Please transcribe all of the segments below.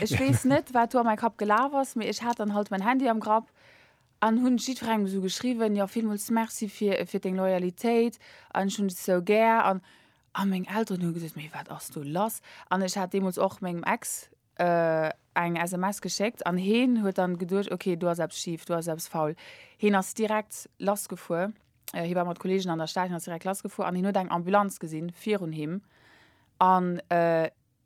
Ech weess net wat do a mäi Kapp gelaf ass, mee ech hat dann halt mäin Handy am Grapp an hunn jiddferengem esou geschriwwen, jo villmools Merci fir fir deng Loyalitéit an ech hunn dech esou gär an a meng Elteren hu gesot, mee wat ass do lass an ech hat deemools och mengem Ex eng SMS geschéckt an heen huet dann geduecht, ok do ass eppes schif, do ass eppes faul. Heen ass direkt lass gefuer, hie war mat Kollegen an der Stad, hien ass direkt lass gefuer an hien huet eng Ambulanz gesinn virun him an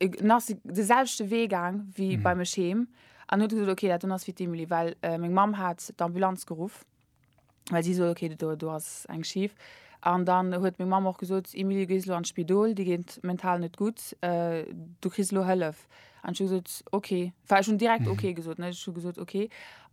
En ass de selwechte Wee gaang wéi bei mech heem an huet gesot, okay, dat do ass fir d'Emily, well meng Mamm hat d'Ambulanz geruff, well si sot, okay, do, do ass eng schif. An dann huet meng Mamm och gesot, Emily, du gees elo an d'Spidol, dir geet mental net gutt, du kriss elo Hëllef. An ech hu gesot, okay. Enfin, ech hunn direkt okay gesot, ne, ech hu gesot, okay.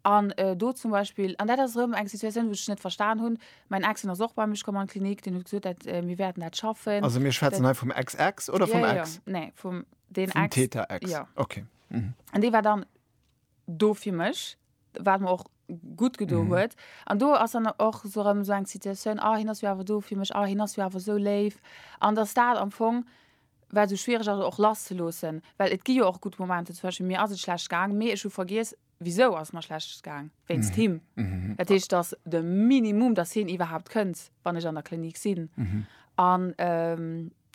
An do zum Beispill, an dat ass erëm eng Situatioun, wou ech net verstan hunn, Mäin Ex, deen ass och bei mech komm an d'Klinik, deen huet gesot, dat, äh, mir wäerten dat schaffen. Also mir schwätzen hei vum Ex-Ex oder vum ja, Ex? Ja. Nee, vum den vum Ex. Täter-Ex. Ja. Okay. Mhm. An dee war dann do fir mech, wat mer och gutt gedo mhm. huet. An do ass dann och so rem so eng Situatioun, ah, hin ass jo awer do fir mech, ah, hin ass jo awer so léif. An dass dat am Fong war so schwierig ass och lass ze loossen, well et gi jo och gutt Momente, zum Beispiel mir ass et schlecht gaang, mee ech hu vergiess, Wisou ass et mer schlecht gaang? Wéinst him. Dat heescht, dass de Minimum, dass hien iwwerhaupt kënnt, wann ech an der Klinik sinn. An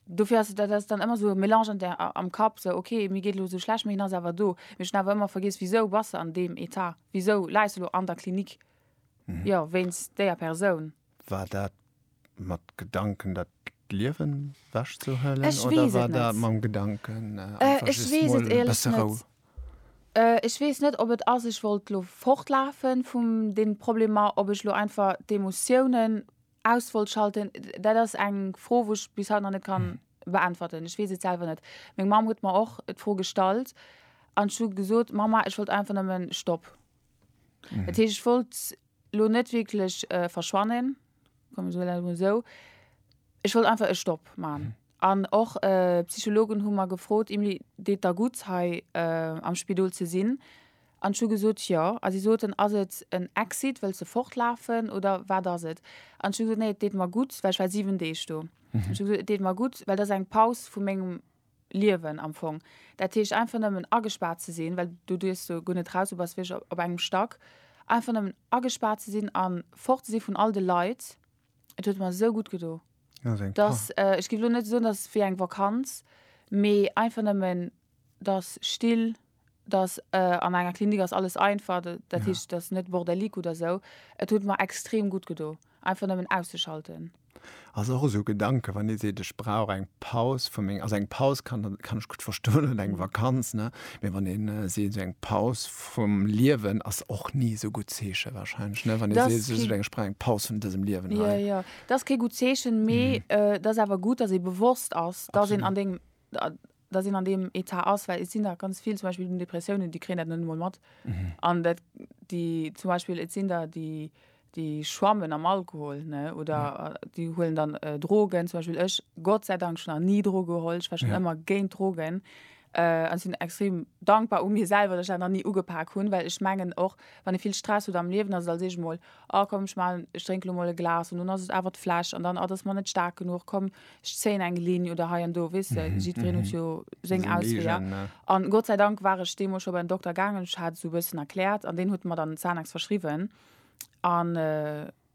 dofir ass et, dat ass dann ëmmer esou e Mélange an der, am Kapp, esou, ok, mir geet elo esou schlecht, mee hien ass awer do. Mee ech hunn awer ëmmer vergiess, Wisou bass de an deem Etat? Wisou läis de elo an der Klinik? Jo, wéinst déier Persoun. War dat mat Gedanken dat Liewen wäsch ze huelen oder war dat mam Gedanken besse Rou? Ech weess net ob et ass ech wollt lo fortlafe vum den Problemer, ob ech lo einfach d'Emotiounen aus wollt schalten, dat ass eng Fro wou ech bis haut nach net kann beäntwerten. Ech weess et selwer net. Meng Mamm huet mer och d'Fro gestallt an ech hu gesot, Mamma ech wollt einfach nëmmen Stopp. Dat heescht ech wollt lo net wierklech verschwannen, soen mir dat emol esou. Ech wollt einfach e Stopp maachen. An och d'Psychologen hu mer gefrot, Emilie, deet der gutt hei am Spidol ze sinn? An ech hu gesot, jo. A si soten, ass et en Exit, wëlls de fortlafen oder wat ass et? An ech hu gesot, nee, et deet mer gutt, well ech war siwen Deeg do. Ech hu gesot, et deet mer gutt, well dat ass eng Paus vu mengem Liewen am Fong. Dat heescht einfach nëmmen agespaart ze sinn, well du duerfs jo guer net raus, du bass wierklech op engem Stack, einfach nëmmen agespaart ze sinn a fort ze si vun all de Leit. Et huet mer esou gutt gedo, dass, ech géif elo net soen, dass et wéi eng Vakanz, mee einfach nëmmen, dass still dass an enger Klinik ass alles einfach, dat heescht, et ass net bordelique oder esou. Et huet mer extrem gutt gedo, einfach nëmmen auszeschalten. Ass och esou e Gedanke, wann ee seet, ech brauch eng Paus vu meng, also eng Paus kann kann ech gutt verstoen oder eng Vakanz, ne, mee wann ee seet, esou eng Paus vum Liewen ass och ni esou gutt Zeeche wahrscheinlech, ne, wann ee seet, esou eng, ech brauch eng Paus vun dësem Liewen hei. Jo, jo, dat ass kee gutt Zeechen, mee et ass awer gutt, dass ee bewosst ass, dass een an deem, dass een an deem Etat ass, well et sinn der ganz vill, zum Beispill un Depressiounen, déi kréien dat net emol mat. An dat, déi zum Beispiel, et sinn der, déi, déi schwammen am Alkohol, ne, oder déi huelen dann Drogen. Zum Beispill ech, Gott sei Dank, ech hunn nach ni Droge geholl, ech war schonn ëmmer géint Drogen. An ech sinn extrem dankbar u mir selwer, dass ech dat nach ni ugepak hunn, well ech mengen och, wann ee vill Stress huet am Liewen, ass et als éischt emol Oh komm ech maan, ech drénk lo mol e Glas an dann ass et awer d'Fläsch an dann, ah dat ass mer net staark genuch, komm ech zéien eng Linn oder hei an do, weess de, jiddwereen huet jo seng Ausweeër. An Gott sei Dank war ech deemools scho bei den Dokter gaangen, ech hat esou e bëssen erkläert an deen huet mer dann Xanax verschriwwen an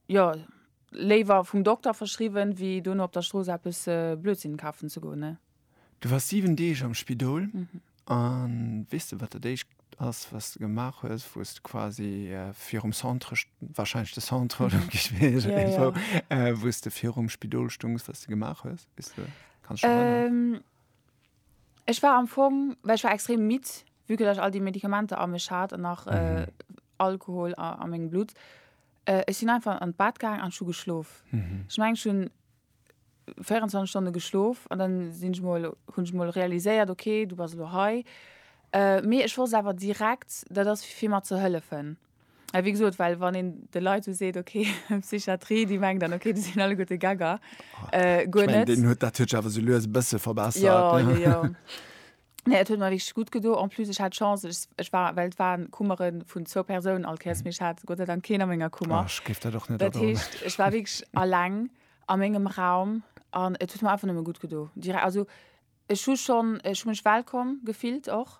jo léiwer vum Dokter verschriwwen, wéi dono op der Strooss eppes Blödsinn kafen ze goen ne. Du wars 7 Deeg am Spidol. Mhm. An weess de, wat dat éischt ass, wat s de gemaach hues, wou s de quasi virum Centre, warscheinlech de Centre oder am Gespidol, ja, ja. äh, wou s de virum Spidol stungs, wat s de gemaach hues? Weess de, kannst du dich erinnern? Ähm, ech war am Fong, well ech war extrem midd, vu que ech all déi Medikamenter a mech hat an nach äh, Mhm. Alkohol a, a mengem Blut. Äh, ech sinn einfach an d'Bad gaang an hu geschlof. Mhm. Ich meng schon 24 Stonne geschlof an dann sinn ech mol hunn ech mol realiséiert okay du bass elo hei äh, mee ech wosst awer direkt dat ass fir fir mat ze hëllefen well wéi gesot well wann een de Leit esou seet okay Psychiatrie déi mengen dann okay déi sinn alleguerte Gegger äh, guer net. Deen huet dat huet sech awer sou lues e bësse verbessert. Jo jo jo. Nee, et huet mer wierklech gutt gedo. En plus, ech hat Chance, ech, ech war, well et waren Kummere vun zwou Persounen all Kéiers, mee ech hat Gott sei Dank keen a menger Kummer. Ech géif dat och net Dat adoen. heescht, ech war wierklech alleng a mengem Raum an et huet mer einfach nëmme gutt gedo. Direk, also ech hu schonn, ech hu mech wellkomm gefillt och.